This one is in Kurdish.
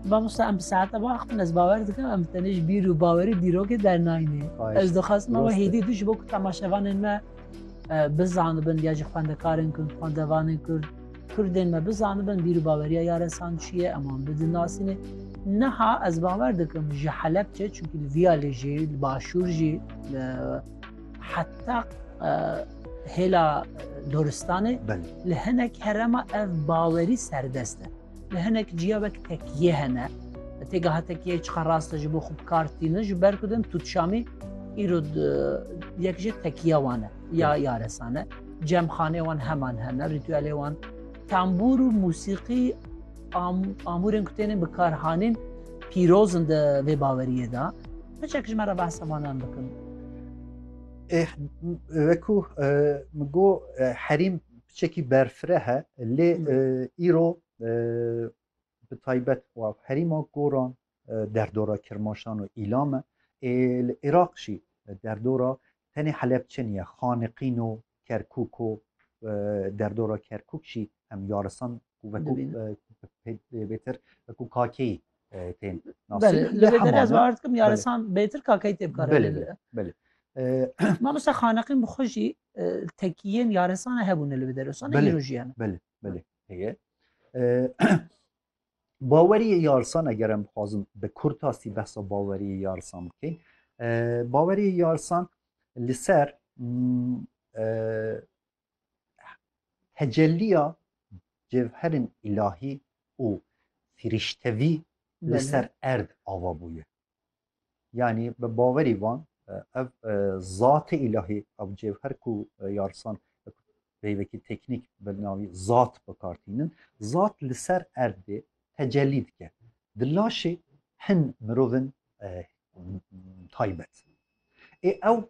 Mamosta em bi saete ve axivin ez bawer dikim em tenê ji bîr û bawerî dîrokê dernayînê. Ez dixwazim ew hêdî du ji bo ku temaşevanên me bizanibin ya jî xwendekarên kurd xwendevanên kurd Kurdên me bizanibin bîr û baweriya yaresan çi ye em wan bidinasînê. Niha ez bawer dikim ji Helepçe çunkî li viya lê jî li başûr jî heta Hêla Doristanê li hinek herema ev bawerî serdest e. Li hinek ciya wek tekiyê hene. Têgaha tekiyê çiqa rast e ji bo xwe bikartînin ji ber ku din tutşamî îro yek ji tekiya wan e ya yaresan e. Cemxanê wan heman hene, rîtûelê wan tembûr û musîqî amûrên ku tênin bikarhanîn pîrozin di vê baweriyê de. Hiçek ji me re behsa vanan bikin. Wekû min got herîm piçekî berfireh e lê îro bi taybet wa herîma goran derdora Kirmaşan û Îlam e. Ê li Iraq jî derdora tenê Helepçe niye, Xaniqîn û Kerkûk û derdora Kerkûk jî em yarisan wekû pê bêtir wekû kakeyî tên nasî. Belê, lê Lê derê ez hemam e. bawer dikim yaresan bêtir kakeyî tê bikare Belê, lêbire. belê. Eh, Mamoste xaneqîn bi xwe jî e, tekiyên yaresane hebûne li Bederosanê Belê. îro jî hene. Belê, belê. Heye. Eh, Baweriyê yarsan eger em bixwazin bi kurtasî behsa baweriyê yarsan bikey. eh, Baweriyê yarsan li ser mm, eh, tecelliya cevherên îlahî û firîştevî li ser erd ava bûye. Yanî bi bawerî van ev zatê îlahî ev cevher ku yarsan peyvekî teknîk bi navî zat bikartînin zat li ser erdê tecellî dike. Di laşê hin mirovin taybet. Ê ew